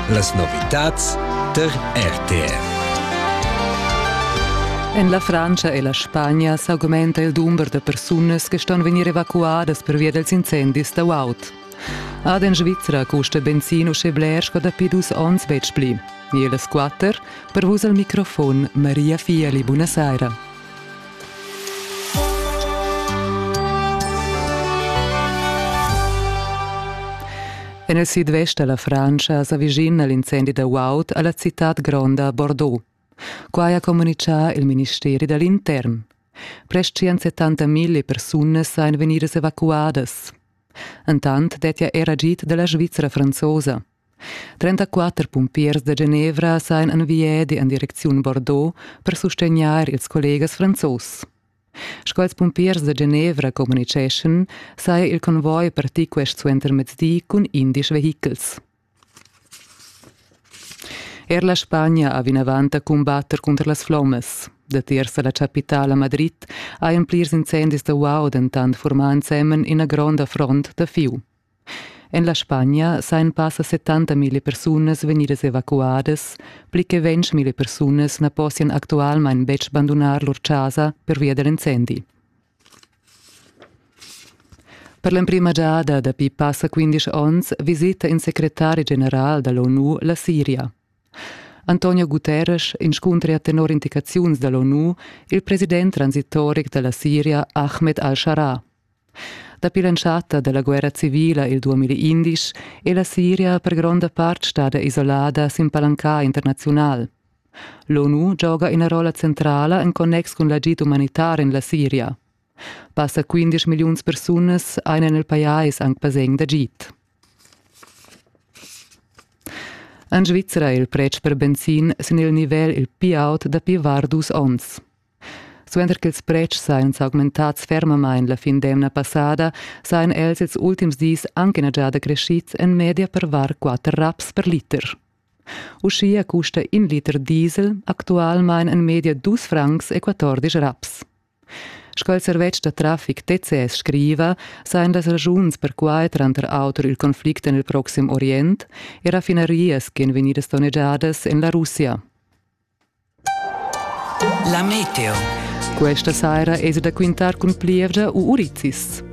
Las novitads tar RTR. En la Frantscha e la Spagna s'augmenta il dumber da persunas che ston vegnir evacuadas pervia dals incendis da guaud. Ad en Svizra custa benzin uschè bler sco dapi dus onns betg pli. E las quatter, per vus al microfon Maria Fieli, buonasera. En il sidvest da la Frantscha s'avicina l'incendi da guaud a la citad gronda Bordeaux. Quai ha communitgà il ministeri da l'intern. Prest 170.000 persunas ein vegnidas evacuadas. Entant dettia era git da la Svizra franzosa. Trentaquatter pumpiers da Genevra sajan en viedi en direcziun Bordeaux per sustegnair ils collegas franzos. Sco ils pumpiers da Genevra communitgeschan, saja il convoi partì quest suentermezdi cun indisch vehichels. Er la Spagna ha vinavant da cumbatter cunter las flommas. Datiers da la chapitala Madrid hajan plirs incendis da uau dentant formà ensemen ina gronda front da fiu. En la Spagna sajan passa settantamilli persunas vegnidas evacuadas, pli che ventschmilli persunas na possian actualmain betg bandunar lur chasa pervia da l'incendi. Per l'emprima giada dapi passa 15 onns visita in secretari general da l'ONU la Siria. Antonio Guterres inscuntra tenor indicaziuns da l'ONU il president transitoric da la Siria Ahmed al-Shara Dapi l'entschatta dalla guerra civila il 2011 è la Siria per gronda part stada isolada sin palanca internaziunal. L'ONU gioga ina rolla centrala en connex cun l'agid umanitar en la Siria. Passa 15 milliuns persunas ein en il pajais anc basegn d'agid. En Svizzera è il pretsch per benzin sin il nivel il piaut dapi var dus onns. Suenter ch'ils pretschs ein s'augmentats fermamain la fin d'emna passada, sajan els ils ultims dis anc ina giada creschids en media per var quatter raps per liter. Uschia custa in liter diesel actualmain en media dus francs e quattordisch raps. Sco il servetsch da traffic TCS scriva, sajan las ragiuns per quai tranter auter il conflict en il proxim Orient e raffinaries ch'en vegnidas donnegiadas en la Russia. La meteo. Questa saira es da quintar cun plievgia u urizis.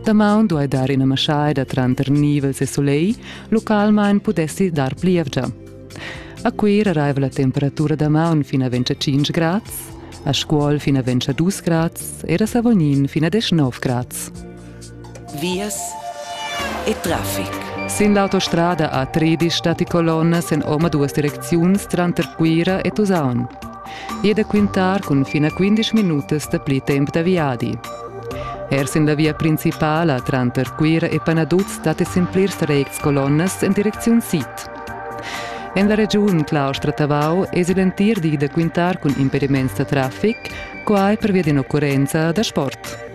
Damaun duai dar ina maschaida tranter nivels e soleil, localmain pudessi dar plievgia. A Cuira raiva la temperatura damaun fin a 25 grads, a Scuol fin a 22 grads e a Savognin fin a 19 grads. vias e traffic. Sin l'autostrada a Tridisch datti colonnas en omaduas direcziuns tranter Cuira e Tusaun. I è da quintar cun fin a 15 minutas da pli temp da viadi. Er sin la via principala tranter Cuira e Panaduz datti sin plirs retgs colonnas en direcziun sid. En la regiun Claustra-Tavau èsi l'entir di da quintar cun impediments da traffic, quai pervia d'in'occurrenza da sport.